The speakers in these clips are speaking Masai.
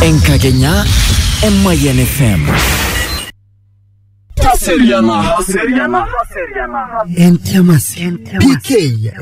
Enkakenya Emayian FM. Entiamasi. PK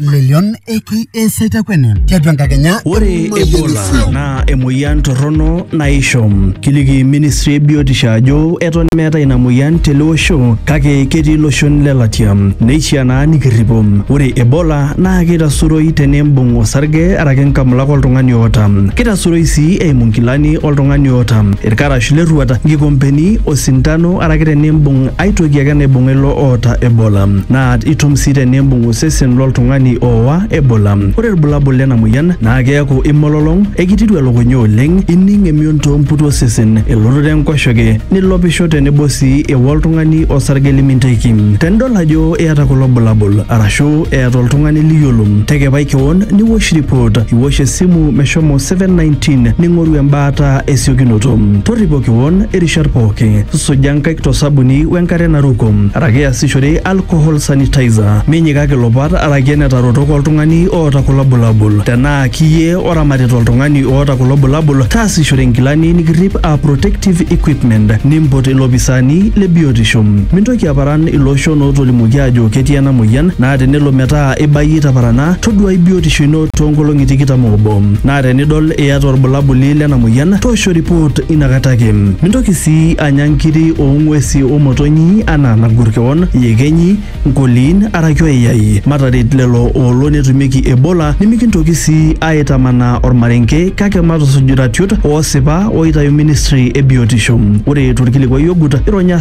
Lelion Eki Esaitakwene. Tiatua enkakenya. Ore Ebola naa emoyian torrono naisho. Kiliki ministry e biotisho ajo eton meeta ina moyian tele osho kake ketii iloshon lelatia. Neishaa naa nikirripo. Ore Ebola naa keitasuroi teneimbung osarge araki nkamulak oltung'ani oota. Keitasuroi sii eimu nkilani oltung'ani oota, ilkarash le rruata, nkikompeni, osintano araki teneimbung ai toki ake naibung'a ilo oota Ebola. Naa itum sii teneimbung osesen lo ltung'ani ooa Ebola. Ore ilbulabul lena moyian naa keaku imololong, eikitiru elukunya oleng, ining emion too mputi osesen, elototo enkoshoke, nilopisho tenebo sii eo oltung'ani osarge liminteki. Tenidol ajo eata kulo bulabul arashu eata oltung'ani liyiolong tekepai kewon niwosh report iwosh esimu meshomo 719 ning'oru embaata esiokinoto torripo kewon irishat pooki suja nkaik tosabuni wenkare naruko araki iasishore alcohol sanitizer minyikaki ilopat araki enetarotok oltung'ani oota kulo bulabul tenaa kiyie oramatita oltung'ani oota kulo bulabul taasishore inkilani nikirrip aa protective equipment nimpot ilopisaani le biotisho Mintoki Neitoki aparan ilooshon ootolimuoki aajo ketii ena mueyian naa tenelo metaa ibayie taparana toduaai biotisho ino too nkolong'i tikitam oobo naa tenidol iyata olbulabuli lena mueyian toosho ripoot ina kata ake. Mintoki sii anya nkiri oo ng'uesi o motonyi anaa nagur kewon, iyekenyi, nkoliin araki oyayai. Mataret lelo oolo netumieki Ebola nimikintoki sii aaitamanaa olmarenke kake matusuj iratiot oosipa ooitayu ministri e biotisho. Ore to lkilikuai ogut, ironya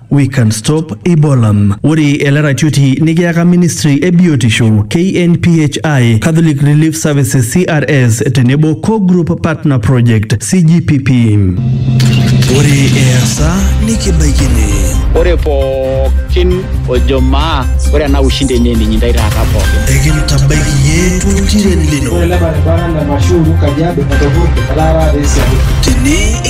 We can stop Ebola. Ore ele ratioti nikiyaka ministry e biotisho, KNPHI, Catholic Relief Services CRS tenebo Co-Group Partner Project CGPP. Ore easa nikibaikini. Ore pookin ojo maa ore ena ushindi enye ninyi ndai taata pookin. Ekintabaiki iyie toltiren lino. Ore ele baribara le Mashuuru Kajiado etopurte etaara te Isiabu. Tene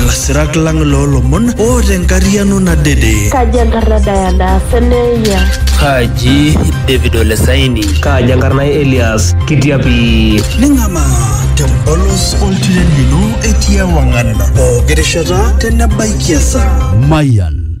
Lasirak lang loo lomon o te nkariano nadede. Kaji enkarna Diana Seneya? Kaji David Olesaini? Kaji enkarna Elias Kitiapi? Ning'ama te mpolos oltiren lino etii ewang'an pooki rishata tenebaikia esaa. Mayan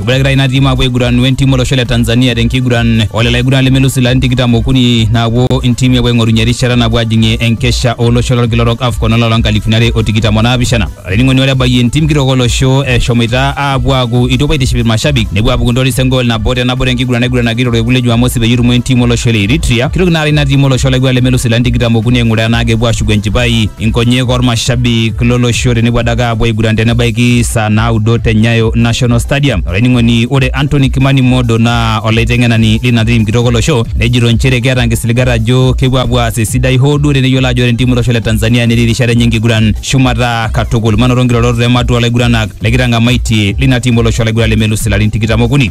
Ibulakita ina tiim apuo aiguran wentim olosho le Tanzania tenkiguran olelo aiguran lemelus ilarin tikitam okuni naapuo intiimi apuo aing'orunye erishata napuo ajing'ie enkesha olosho lolkila orok AFCON olapa loo nkalifuni are o tikitam o naapishana. Olainining'oni ore ebayie entim kitok olosho eshomoita aapuo aaku itu epuo aitiship ilmashabik nepuo aapuku ntoris engool nabo te nabo tenkiguran naiguranaki torkekun le Jumamosi peyie etumo entim olosho le Eritrea kitok naara ina tiim olosho laiguran lemelus ilarin tikitam okuni aing'uraa enaa kepuo aashuku enchipai inkonyek ormashabik lolosho tenepuo adake apuo aiguran tenebaiki saa naudo te Nyayo National Stadium. Olainining'oni ore Anthony Kimani Modo naa olaiteng'enani lina tim kitok olosho nejito nchere keeta nkisiligat ajo kepuo apuo aas esidai hoo duo teneyiolo ajo ore entiim olosho le Tanzania netii rishata enye enkiguran shumata katukul. Manoto nkirorot ematua olaiguranak lekitang'amaitie lina tim olosho olaiguran lemelus ilarin tikitam okuni.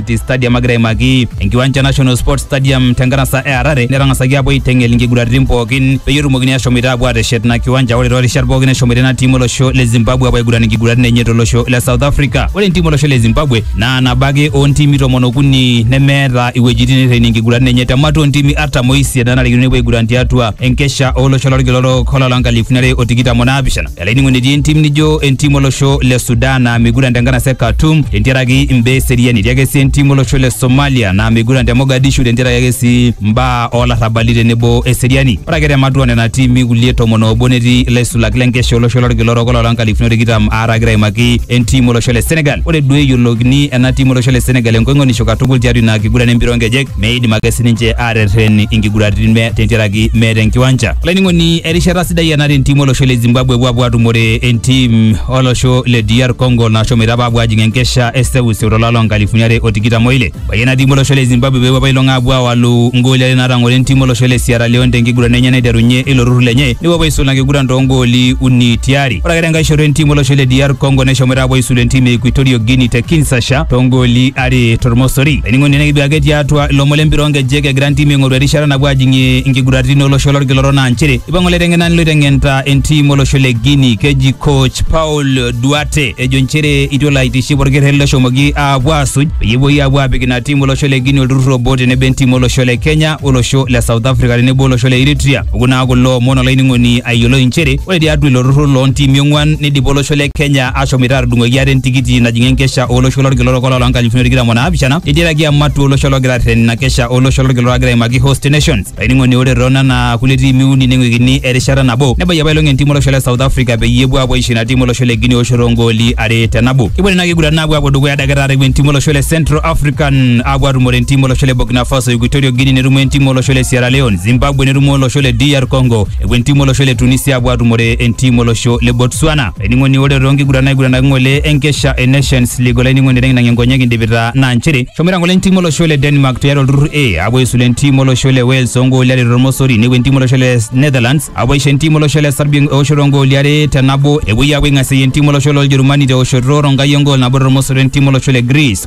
City Stadium agira aimaki enkiwanja National Sports Stadium tenkanasa e Harare netang'asaki aapuo aiteng'el inkiguraritin pookin peyie etumokini ashomoita aapuo aateshet ina kiwanja ore toorishat pookin neshomoita ina tiim olosho le Zimbabwe aapuo aiguran inkiguraritin enye tolosho le South Africa. Ore entiim olosho le Zimbabwe naa nabo ake oontiimi tomon okuni nemeeta iwuejitin neirrenie inkiguraritin enye te matua oontiimi artam oisiet naanarikino nepuo aiguran tiatua enkesha olosho lolkila orok olapa loo nkalifuni are o tikitam o naapishana. Elaining'oni etii entim nijo entim olosho le Sudan naa meiguran te nkanasa e Khartoum tentiaraki imbaa eseriani. Etii ake sii entim olosho le Somalia naa meiguran te Mogadishu tentiaraki ake sii mbaa oo larrabali tenebo eseriani. Ore ake te matua nena tiimi kulie tomon oobo netii ilaisulak le nkesha olosho lolkila orok oloola nkalifuni o tikitam aare agira aimaki entim olosho le Senegal. Ore duo eyiolookini ena tim olosho le Senegal enkoing'onisho katukul tiatua ina kiguran e mpira oo nkejek. meidim ake sininche aaterren inkiguraritin me- tentiaraki meeta enkiwanja. Olainining'oni erishata sidai ena tentim olosho le Zimbabwe epuo apuo atumore entim olosho le DR Congo nashomoita apa apuo ajing enkesha e seuseu tolapa loo nkalifuni are o tikitam oile. Ebayie ena tim olosho le Zimbabwe peepuo apa ailong apuo awalu ngooli are naatang'oro entim olosho le Sierra Leone tenkiguran enye naiterunye ilo turrur lenye nepuo apa aisul ina kiguran too ngooli uni tiari. Ore ake tenkae shoto entim olosho le DR Congo neshomoita apuo aisul entim e Equatorial Guinea te Kinshasa too ngooli are tormosori laining'oni nekiduake tiatua ilomon lempira onkejek egira ntimi aing'oru erishata napuo ajing'ie inkiguraritin olosho lolkiloro naa nchere ipang'u laiteng'enani loiteng'enta entim olosho le Guinea keji coach Paul Duarte ejo nchere itu elo aitiship orkerreri loshomoki aapuo aasuj peyie epuoi aapuo apik ina tim olosho le Guinea olturrur obo tenebo entim olosho le Kenya olosho le South Africa tenebo olosho le Eritrea Oku naa kulo omon olainining'oni ayiolou inchere ore tiatua ilo turrur loo ntiimi ong'uan neidipa olosho le Kenya ashomoita aatudung'oki ate entikiti najing'ie enkesha olosho lolkila orok olapa loo nkalifuni tikitam o naapishana eiteraki ematua olosho logira arreten ina kesha olosho lolkila orok agira aimaki Host Nations. Olainining'oni ore too nena kulie tiimi uni neng'uikini erishata nabo nebayie apailong entim olosho le South Africa peyie epuo aapuo aisho ina tim olosho le Guinea eoshoto oo ngooli are te nabo. Kepuo nena kiguratin aapuo aapuo dukuya adake taata epuo entim olosho le Central African aapuo aatumore entim olosho le Burkina Faso, Equatorial Guinea netumo entim olosho le Sierra Leone. Zimbabwe netumo olosho le DR Congo epuo entimu olosho le Tunisia apuo atumore entimu olosho le Botswana. Ening'oni ore too nkiguran naiguranaki ng'ole enkesha e Nations League olaining'oni teng'inang'ie nkonyek indipita naa nchere eshomoita ng'ole entimu olosho le Denmark tiatua olturrur A apuo aisulu entimu olosho le Wales oo ngooli are tormosori nepuo entimu olosho le Netherlands apuo aisho entimu olosho le Serbia eoshoto oo ngooli are te nabo epuoi apuo aing'asieyie entimu olosho loo Ljerumani te oshoto Ronkai e ngool nabo tormosori o entimu olosho le Greece.